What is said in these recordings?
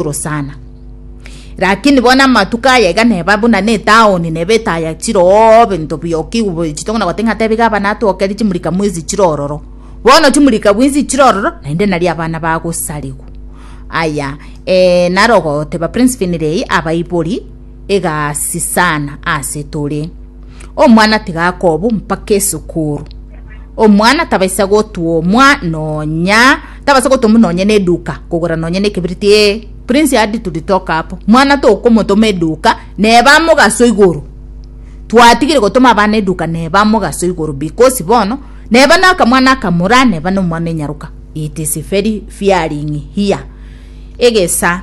igoro sana. Lakini bono amatuko aya iga neba buna netaoni neba etaya chiroo bento bioki boichi tokona gote ng'a tebi gaba natwokeri chimurika mwezi chirororo bono chimurika bwinsi chirororo naende nari abana bagosarigu aya eh, naro goteba prince finirei abaibori egasisana ase tore. Omwana tiga akobu mpaka esukuru. Omwana tabaisa gotuomwa nonya tabaisa gotuomwa nonya ne duka kogora nonya ne kibiriti ee prince adi to talk apo mwana tokomotoma eduka neba mogaso igoro twatigire gotoma abana eduka neba mogaso igoro because bono neba naka mwana akamura neba no mwana enyaruka it is very fearing here egesa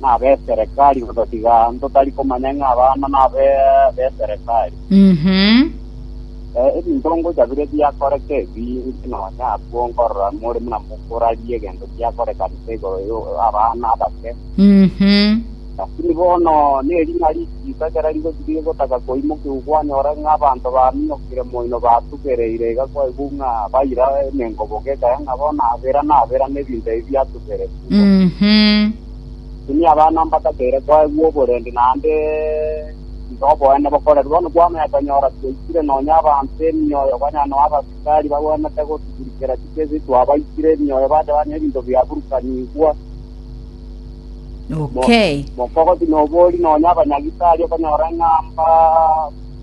nabeserekari gototiga ntotari komanya ng'a abana nabe beserekari Mhm. Eh, ebinto ngocha bire biakoreka ebi inche nonya abwo nkorora more buna mokorarie egento giakorekanete igoro yo abana abake Mhm. lakini bono nerina richiika ekero rigochi rigotaka koimokiwa kwanyora ng'a abanto bamiokire moino batugereire iga kwaigwa ng'a baira emengoboka ekaya ng'a bono abera nabera na ebinto ebi biatu bere kubo. Mhm. Tini abana mbatakeire koegwa oborende naende iga oboene bokorerwe. Bono kwamanya tonyora twaikire nonya abanto emioyo konya noa abasikari bagwenerete gotugurikera chikesi twabaikire emioyo bacha banywa ebinto biaburukanigwa. Okay. Mokogo tinobori nonya abanyagitari okonyora ng'a mba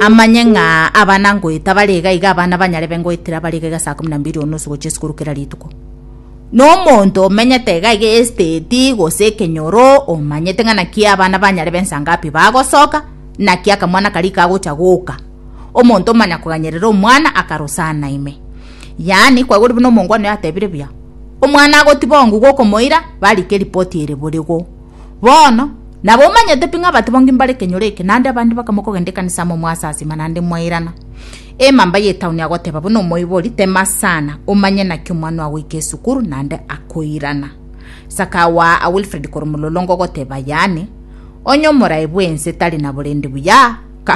Amanye ng'a abana ngoeta bare iga iga abana banyarebe ngoetera bare iga iga saa kumi na mbili o nusu gochia esukuru kera rituko. Na omonto omenyete iga iga esiteti gose ekenyoro omanyete ng'a naki abana banyarebe nsa ngapi bagosoka, naki akamwana karia kagocha goka. Omonto omanya koganyerera omwana akarosana ime. Yaani kwaigure buna omongwana oyo atebire buya, Omwana agotiba ongu gokomoira, barike ripoti ere borigo. Bono, nabo omanyete pi ng'a batibongi mbare ekenyoro eke, naende abande bakamwa kogenda ekanisa amo mwasasima naende mwairana. Emamba y'etauni agoteba buna omoibori, Tema sana, omanye naki omwana oa goika esukuru naende akoirana. Sakao aa Wilfred korwa omololongo ogoteba, Yaani, onye omorai bw'ense tari na borendi buya, ka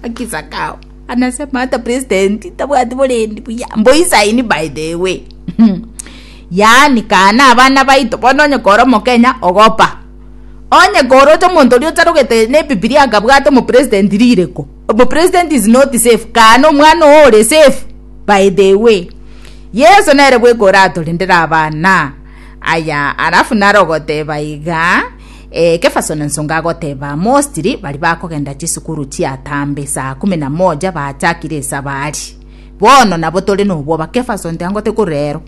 Aki Sakao anasema hata president tabwati borendi buya. Mboisaini by the way. yaani kaa nabana baito, bono onye kore omokenya ogopa, onye kore ocha omonto oria otarogete nebibilia akabwata omopresident rire ko, omopresident is not safe kaa nomwana oo ore safe by the way Yeso nere bweka oratorendere abana aya alafu nare ogoteba igaa eh, kefasona nsonga agoteba mostly bari bakogenda chisukuru chiatambe saa kumi na moja bachakire esabari Bono nabo tore nobwoba Kephas onte angote ko rero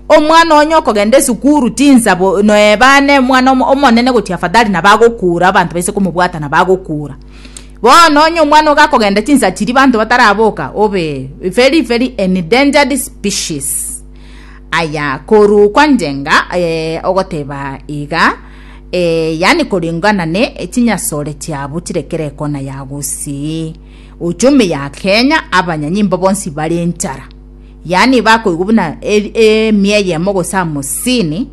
omwana onye okogenda esukuru tinsabo noebane omwana omonene gochi afadhali na bagokura abanto baise komobwata na bagokura bono onye omwana oga akogenda tinsachiri banto bataraboka obe very very endangered species aya koru kwanjenga eh, ogoteba iga eh, yani koringana ne chinyasore chiabu chirekere ekona ya gusii ochome ya Kenya abanyanyimbo bonsi bare enchara yaani bakoigwa buna e- emia eyemo gose hamsini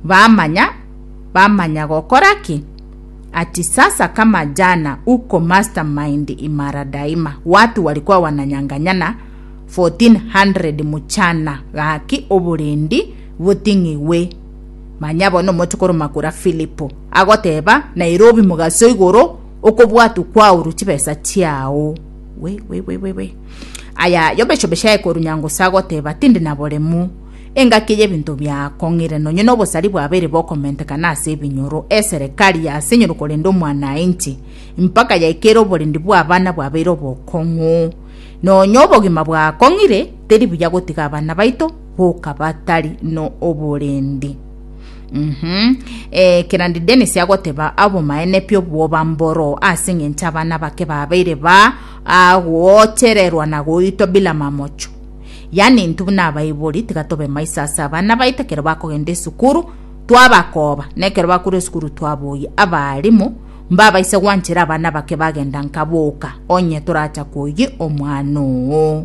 bamanya bamanya gokora ki ati sasa kama jana uko mastermind imara daima watu walikuwa wananyanganyana 1400 mchana gaki oborendi boting'igwe manya bono omochokoro makura filipo agoteba nairobi mogaso igoro Okobwatwa kwao ru chibesa chiao. We, we, we, we, we. Aya yobecho beshae koru nyango sagoteba tindi na boremu. Engaki y'ebinto biakong'ire nonye n'obosari bwabere bokomentekana ase ebinyoro, eserekari ase enyoro korenda omwanainchi, mpaka yaikere oborendi bw'abana bwabeire obokong'u. Nonye obogima bwakong'ire, teri buya gotiga abana baito boka batari no oborendi. Mhm. Eh, kerandi Dennis agoteba abomaene pi obwoba mboro ase engencho abana bake babeire ba agoochererwa na goitwa bila mamocho. Yani intwe buna abaibori tiga tobe maiso ase abana baito ekero bakogenda esukuru twabakoba na ekero bakorwa esukuru twaboyia. Abaalimu mbabaise gwanchera abana bake bagenda nka boka onye toracha koyia omwana oo.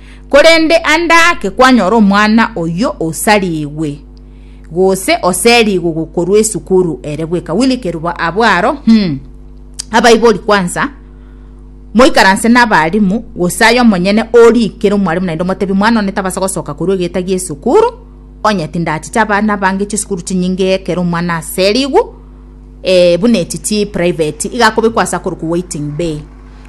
Korende ande ake kwanyora omwana oyio osarigwe, gose oserigwe gokorwa esukuru ere bweka Willy Kerubo abwo aro, Hum. Abaibori kwansa, moikaranse nabalimu, gose aye omonyene orikere omwalimu naende omotebi, Mwana one tabasa gosoka korwa egeeta gi'esukuru, onye tindachiche abana abange chisukuru chinyinge ekero omwana aserigwe, eh, buna echi chi private, iga akobekwa ase akorokwa waiting bay.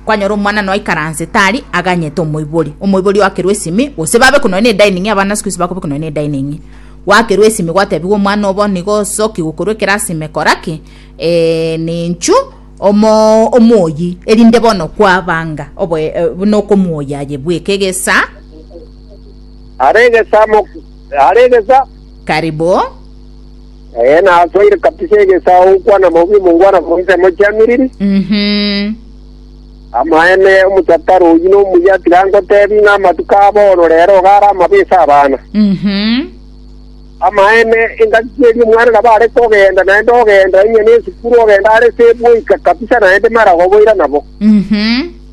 Kwanyora omwanano aikaranse tari aganyete omoibori, omoibori oakerwe esimi, gose babekwa nonya nedaining, abana sikuisi bakobekwa nonya nedaining. Gwakerwa esimi gwatebigwa omwana obo nigo osoki gokorwa ekerasi ime kora ki? Eh, ninchu omo omoyi erinde bono kwabanga obo eh, buna okomuoya aye bweka egesa. Are egesa mo, are egesa. Karibu. Ee, nasoire kabisa egesaao gokwana maubi omongwana korwa amo chiamiriri. Mhm. Amaene, omochakare oyio nomuya tiga ngotebi ng'a amatuko a bono rero iga are amabe ase abana. Mhm. Amaene, engaki keria omwana nabo are kogenda, naende ogenda onye nesukuru ogenda are se boika kabisa naende maragoboira nabo. Mhm.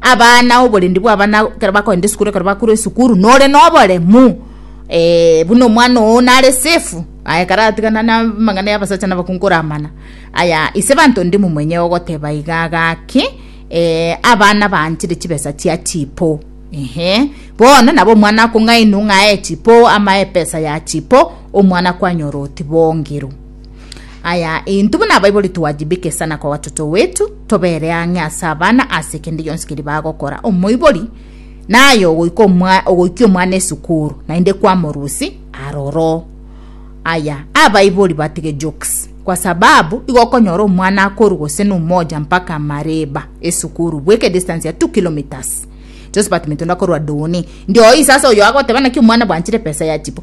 Abana oborendi bw'abana ekero bakogenda esukuru ekero bakorwa esukuru nore noboremu eh, buna omwana oo nare safe aye ekero aratigana na amang'ana ya abasacha na abakungu koramana aya ise banto ndi momonye ogoteba iga gaki eh, abana baanchire chibesa chia chipo ehe bono nabo omwana akong'ainwa ng'ae chipo amae epesa ya chipo omwana kwanyora otibongirwe Aya, intwe buna abaibori twajibeke sana kwa watoto wetu, tobere ang'e ase abana ase kende gionsi keri bagokora. Omoibori naye ogoika omwa- ogoikia omwana esukuru, naende kwamorusi aroro. Aya, abaibori batige jokes, kwa sababu igo okonyora omwana akoru gose na umoja mpaka Mareba esukuru, bweka edistance ya two kilometres. Josephat Mitunda korwa Doni. Ndio oyi sasa oyo agoteba naki omwana bwanchire pesa ya chipo.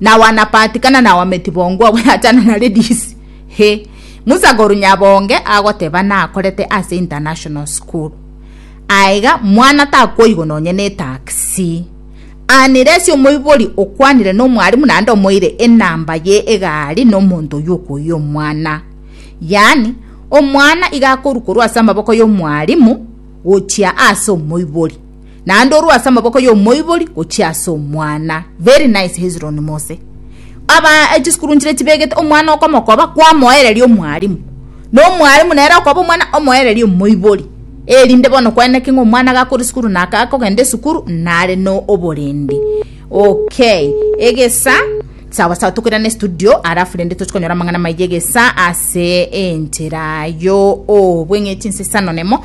na wanapatikana na wametibongwa bweachana na ladies he Musa koru nyabonge agoteba nakorete ase international school aiga mwana takoigo nonye ne taxi anire ase omoibori okwanire no mwarimu nande omoire enamba ye egari no monto yokoyi omwana yani omwana igakoru koru ase amaboko yo mwarimu gochia ase omoibori naende orue ase amaboko y'omoibori gochia ase omwana. Very nice Hezron Mose. Aba eh, chisukuru nchire chibegete omwana okomokoba kwamoereria omwalimu. Na omwalimu nere okoba omwana omoereria omoibori. Erinde bono kweneke ng'a omwana gakore sukuru na akagenda esukuru nare no oborindi. Okay. Egesa sawa sawa tokoirane studio alafu rende toche konyora amang'ana maiye egesa ase enchera yo obweng'echi nsesano nemo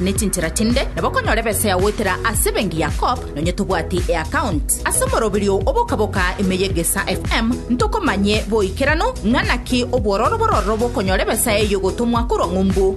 ne chinchera chinde, nabo okonyora ebesa ya goetera ase ebenki ya Co-op, nonye tobwati eaccount. Ase omoroberio o boka-boka ime ye Gesa FM, ntokomanye boikeranu ng'a naki obwororo bororo bokonyora ebesa eyio gotomwa korwa ng'umbu.